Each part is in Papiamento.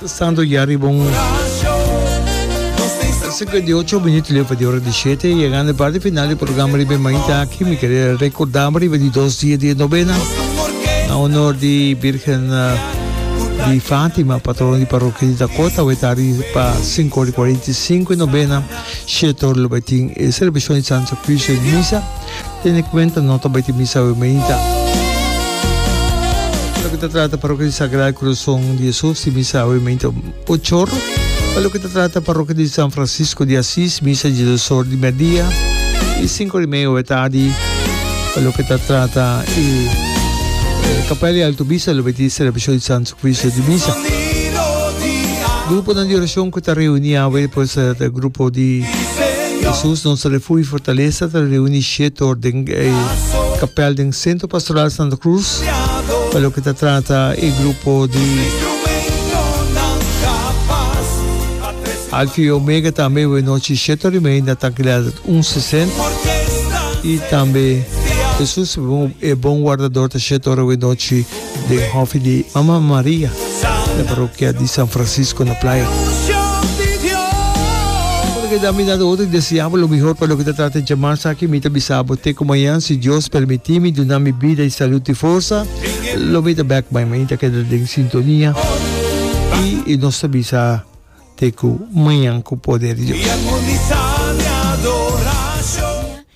Santo ya riba un cincuenta y ocho minuto leva di ora di siete llegando e parte final di programa riba e mañita aki mi kere recordaba riba di dos dia di e novena na honor di Virgen di Fatima patrona di parroquia di Dakota we ta riba cinco ora y cuarenta y cinco e novena shetor lo bay tin e celebracion di Santa Cruz e misa Tene cuenta no ta bai tin misa awe mainta. Loke ta trata Parroquia di Sagrado Corazon di Jesus tin misa awe mainta ocho or. Pa loke ta trata Parroquia di San Francisco di Asis misa di dos or di miadia y cinco or y media awe tardi. Pa loke ta trata e Capella di Alto Misa lo bai tin celebracion di Santo Sacrificio di misa. Gruponan di oracion cu ta reuni awe pues ta grupo di. Hesus, nos Refugio i Fortalesa, ta reuni Shetor den e kapèl den Sentro Pastoral Santa Cruz pa loke ta trata e grupo di Alfa i Omega. Tambe e nochi Shetor Rimei na Tanquilidad un sesènt i tambe Hesus, e bon wardador, ta Shetor e nochi. den hofi di Mama Maria na parokia di San Francisco na Playa. Bueno, keda mi na otro deseá bo lo mihor pa loke ta trata di djamar esaki. Mi ta bisa bo te ku mañan, si Dios permití mi duna mi bida i salud i forsa, lo mi ta bèk bai. Mi ta keda den sintonia i nos ta bisa te ku mañan ku poder di Dios.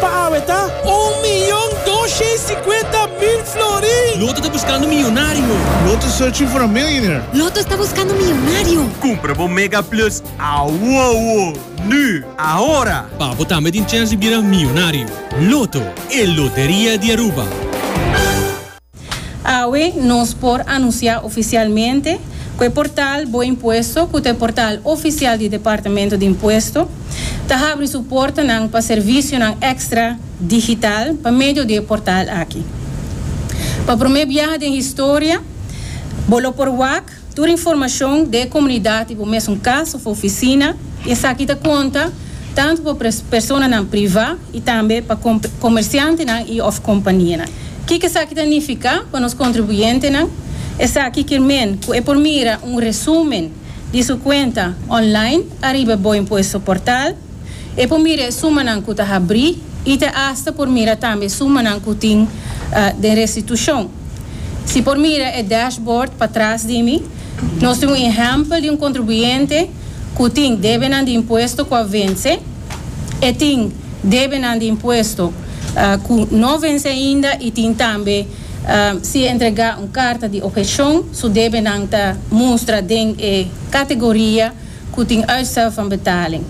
Pa awe ta un miyon dos shei sikuenta mil florin. Loto ta buskando miyonario. Loto searching for a millionaire. Loto sta buskando miyonario. Kumpra bo Mega Plus awowo, nu, ahora! Pa bo tambe tin chèns di bira miyonario. Loto, e loteria di Aruba. Awe nos por anunsiá ofisialmente ku e portal Bo Impuesto, ku ta e portal ofisial di Departamento di Impuesto, ta habri su portanan pa servisionan èkstra digital pa medio di e portal aki. Pa promé biaha den historia, bo lo por wak Tur informashon den e komunidat i bo mesun kas òf ofisina, i esaki ta konta tantu pa personanan privá i tambe pa komersiantenan i òf kompanianan. Kiko esaki ta nifiká pa nos kontribuyentenan? Esaki kier men ku e por mira un resúmen di su kuenta online ariba boinpo e soportal. E por mira e sumanan ku ta habrí i ta asta por mira tambe e sumanan ku tin den restitushon. Si por mira e dashboard patras di mi, nos tin un ehèmpel di un kontribuyente ku tin debenan di impuesto ku a vense, e tin debenan di impuesto ku no vense ainda i tin tambe si e entregá un karta di obhekshon su debenan ta mustra den e kategoria cu tin uitstel van betaling.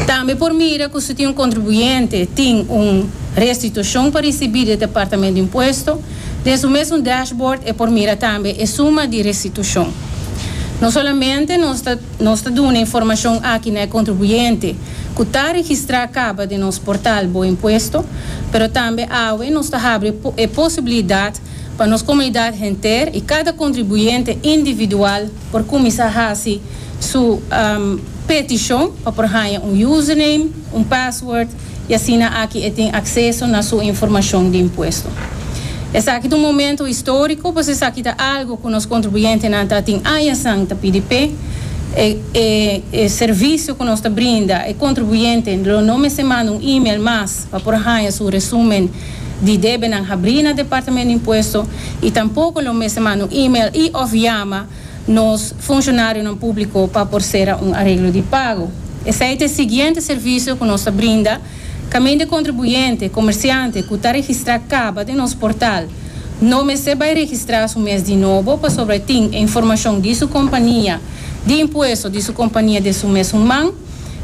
Tambe por mira cu si tin un contribuyente tin un restitucion pa ricibi di e Departamento di Impuesto, den su mes un dashboard e por mira tambe e suma di restitucion. No solamente nos ta nos ta duna informacion aki na e contribuyente cu ta registra caba den nos portal Bo Impuesto, pero tambe awe nos ta habri e posibilidad pa nos comunidad henter y cada contribuyente individual, por cuminsa haci su peticion pa por haya un username, un password y asina aki e tin acceso na su informacion di impuesto. Esaki ta un momento historico pues esaki ta algo cu nos contribuyentenan ta tin aña san ta pidi p'e. E servicio cu nos ta brinda e contribuyente lo no mester manda un email mas pa por haya su resumen. di debenan habrí na Departamento di Impuesto i tampoko lo mester manda un email i òf yama nos funshonarionan públiko pa por sera un areglo di pago. Esei ta e siguiente servisio ku nos ta brinda kaminda e kontribuyente, komersiante, ku ta registrá kaba den nos portal no mester bai registrá su mes di nobo pasobra e tin e informashon di su kompania di impuesto di su kompania den su mesun man.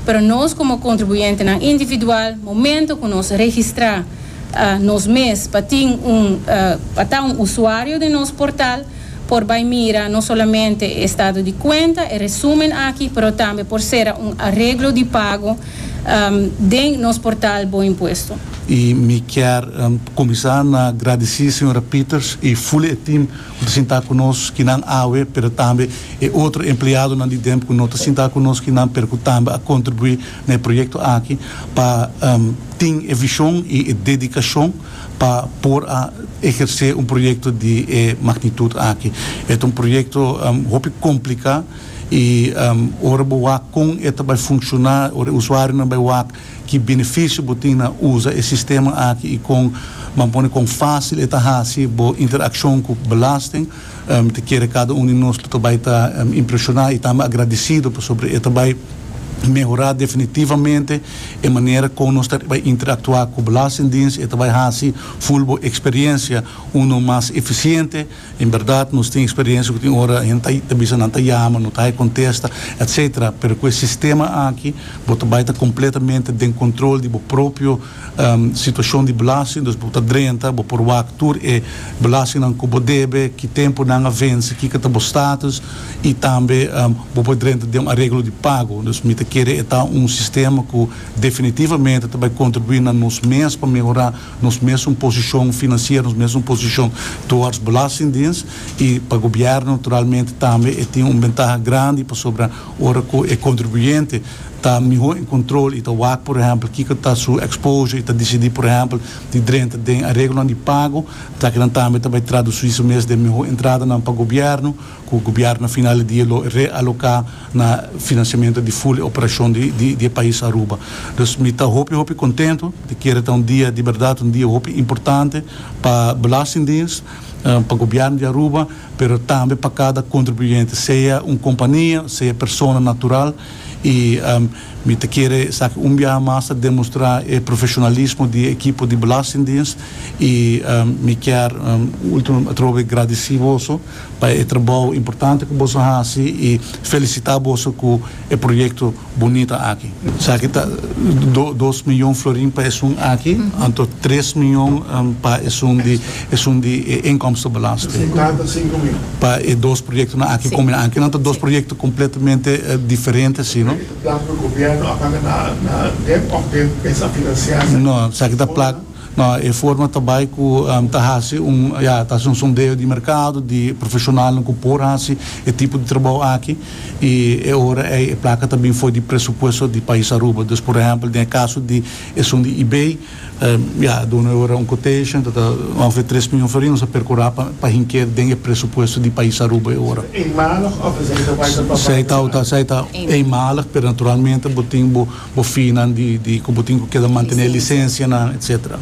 Pero nos komo kontribuyentenan individual, momento ku nos registrá nos mes pa tin un pa ta un usuario den nos portal, por bai mira no solamente e estado di kuenta, e resumen aki, pero tambe por sera un areglo di pago den nos portal Bo Impuesto. I mi kier kuminsá na gradisí señora Pieters i Fully e tim. Ku ta sinta ku nos kinan awe, pero tambe e otro empleadonan di Demp ku no ta sinta ku nos kinan pero ku tambe a kontribuí na e proyekto aki pa tin e vishon i e dedikashon pa por a ehersé un proyekto di e magnitut aki. E ta un proyekto hopi kompliká i ora bo wak kon e ta bai funshoná, ora e usuarionan bai wak Ki benefisio bo tin na usa e sistema aki i kon ban pone kon fásil e ta hasi bo interakshon ku belasting? Mi ta kere kada un di nos lo ta bai ta impreshoná i tambe agradisido pasobra e ta bai mehorá definitivamente e manera kon nos ta bai interaktuá ku Belastingdiens i e ta bai hasi full bo eksperiensia unu mas efisiente En berdad nos tin experiencia cu tin ora hende ta ta bisa nan ta yama, no ta hay contesta, etc. Pero cu e sistema aki bo ta bay ta completamente den control di bo propio situacion di belasting, dus bo ta drenta, bo por wak tur e belastingnan cu bo debe, ki tempo nan a venci, kiko ta bo status y tambe bo por drenta den un areglo di pago. Dus mi ta kere e ta un sistema cu definitivamente ta bay contribui na nos mes pa mehora. nos mesun posishon finansiero, nos mesun posishon towards belastingdiens i pa gobièrnu naturalmente tambe e tin un bentaha grandi pasobra ora ku e kontribuyente ta mihó en kontrol i ta wak por ehèmpel kiko ta su exposure i ta disidí por ehèmpel di drenta den areglonan di pago lakinan tambe ta bai tradusí su mes den mihó entradanan pa gobièrnu. ku gobièrnu final di dia lo realoká na finansiamentu di ful e operashon di e pais Aruba. Dus mi ta hopi hopi kontentu, e kere ta un dia di bèrdat, un dia hopi importante pa Belastingdiens, pa gobièrnu di Aruba, pero tambe pa kada kontribuyente, sea un kompania, sea persona natural, i mi ta kere esaki un biaha mas ta demostrá e profeshonalismo di e ekipo di Belastingdiens, i mi kier último atrobe gradisí boso. pa e trabou importante ku boso hasi i felisitá boso ku e proyekto bunita aki. Esaki ta dos mion florin pa esun aki, anto tres mion pa esun di esun di e inkomstenbelasting. Pa e dos proyektonan aki kombinando, kinan ta dos proyekto kompletamente diferente si no. Esaki ta plak ku gobierno a paga na den òf den mesa finansianan? No, esaki ta plak. No, e forma ta bai ku ta hasi un, ya, ta hasi un sondeo di merkado di profeshonalnan ku por hasi e tipo di trabou aki. I e ora ei e plaka ta bin for di presupuesto di pais Aruba. Dus por ehèmpel den e kaso di esun di Ebay, ya, a duna e ora un quotation ta ta ongeveer tres mion for ei, nos a perkurá pa pa hink'é den e presupuesto di pais Aruba e ora. Eenmalig of esei ta bai ta tòp? Sei ta, esei ta eenmalig, pero naturalmente bo tin bo. bofinan di di ku bo tin ku keda mantené lisensianan etcetera.